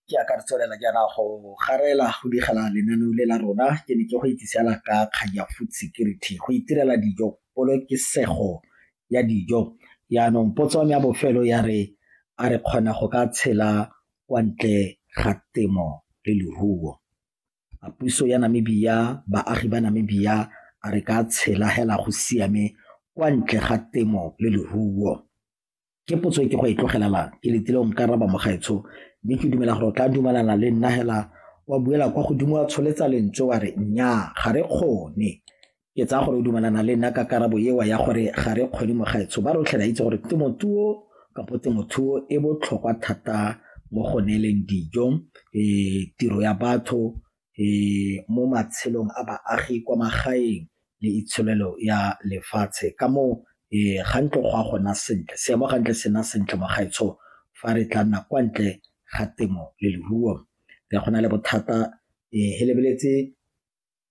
Ke a ka re tswelela jaana go garela go digela lenaneo le la rona ke ne ke go itsisela ka kgang ya food security go itirela dijo polokesego ya dijo yaanong potso ya bofelo ya re a re kgona go ka tshela kwa ntle ga temo le leruo a puso ya Namibia baagi ba Namibia a re ka tshela hela go siame kwa ntle ga temo le leruo. Ke potso e ke go e tlogelelang, ke letile go nkaraba mogaetsho mme ke dumela gore o tla dumalana le nna fela wa buela kwa godimo wa tsholetsa lentswe wa re nnyaa ga re kgone. Ke tsaya gore o dumalana le nna ka karabo ewa ya gore ga re kgone mogaetsho. Ba rotlhe re a itse gore temothuo kapo temothuo e botlhokwa thata mo go neeleng dijo tiro ya batho mo matshelong a baagi kwa magaeng le itsholelo ya lefatshe ka moo ga ntlo go a gona sentle seemo ga ntle se na sentle mo gaetsho fa re tla nna kwa ntle ga temo le leruo re go na le bothata he lebeletse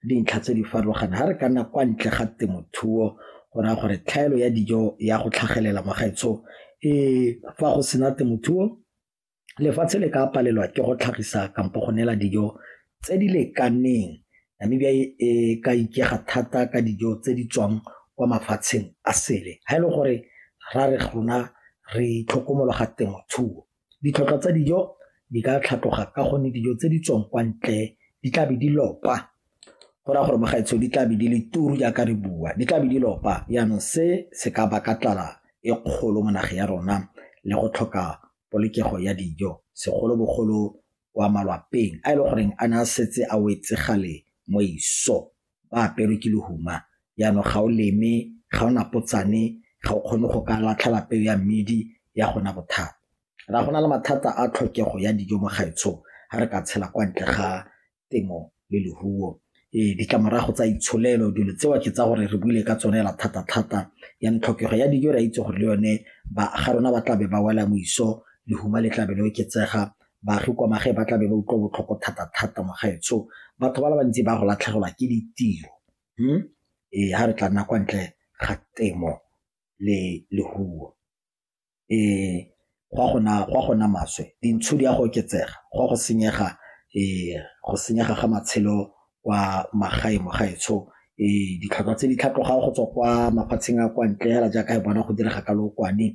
dintlha tse di farologaneng ga re ka nna kwa ntle ga temothuo go raya gore tlhaelo ya dijo ya go tlhagelela mo gaetsho fa go sena temothuo lefatshe le ka palelwa ke go tlhagisa kampo go neela dijo tse di lekaneng Namibia e, e ka ikega thata ka dijo tse di tswang kwa mafatsheng a sele ga e le gore ra re rona re itlhokomologa temothuo ditlhotlhwa tsa dijo di ka tlhatloga ka gonne dijo tse di tswang kwa ntle di tla be di lopa go raya gore magaetsho di tlabe di le turu jaaka re bua di tlabe di lopa yaanong se se ka baka tlala e kgolo mo nageng ya rona le go tlhoka polokego ya dijo segolobogolo kwa malwapeng a e le goreng a ne a setse a wetse gale mo iso ba aperwe ke lehuma yaanong ga o leme ga o napotsane ga o kgone go ka latlhela peo ya mmidi ya gona bothata ra go na le mathata a tlhokego ya dijo mo gaetsho ga re ka tshela kwa ntle ga temo le leruo. Ee, ditlamorago tsa itsholelo dilo tseo ke tsa gore re buile ka tsone la thata-thata ya tlhokego ya dijo re a itse gore le yone ba ga rona ba tlabe ba wela moiso lehuma le tlabe le oketsega baagi kwa magae ba tlabe ba utlwa botlhoko thata-thata mogaetsho batho ba le bantsi ba go latlhegelwa ke ditiro hmm? ee ga re tla nna kwa ntle ga temo le lehuo go a go nna maswe dintsho di a go oketsega go a go senyega go senyega ga matshelo kwa magaeng mo gaetsho ditlhwatlhwa tse di tlhatlogang go tswa kwa mafatsheng a kwa ntle fela jaaka e bona go direga ka lookwane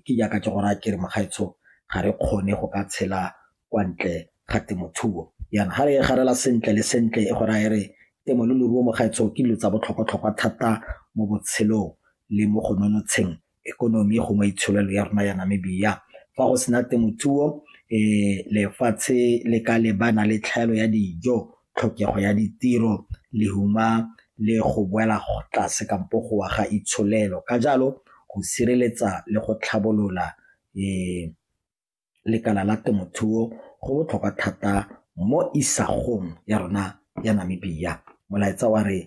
ke jaaka ke go raya kere mo gaetsho ga re kgone go ka tshela kwa ntle ga temothuo jaanong ga re e garela sentle le sentle e go raya re temo le leruo mo gaetsho ke dilo tsa botlhokwa-tlhokwa thata mo botshelong le mo go nonotsheng economy gongwe itsholelo ya rona ya Namibia fa go sena temothuo um lefatshe le ka lebana le tlhaelo ya dijo tlhokego ya ditiro lehuma le go boela tlase kampo go wa ga itsholelo ka jalo go sireletsa le go tlhabolola um lekala la temothuo go botlhokwa thata mo isagong ya rona ya Namibia. Molaetsa wa re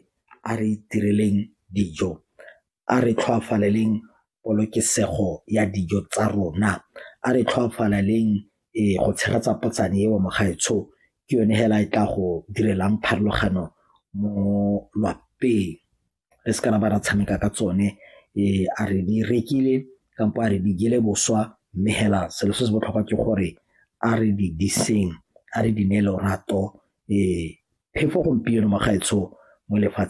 a re itireleng dijo, a re tlhoafaleleng polokesego ya dijo tsa rona, a re tlhoafaleleng go tshegetsa potsane eo mogaetsho ke yone hela e tla go direlang pharologano mo lwapeng. re seka ra ba ra tshameka ka tsone a re di rekile kampo a re di jele boswa mme hela selo se se botlhokwa ke gore a re di diseng a re di ne lorato phefo gompieno magaetsho mo lefatshe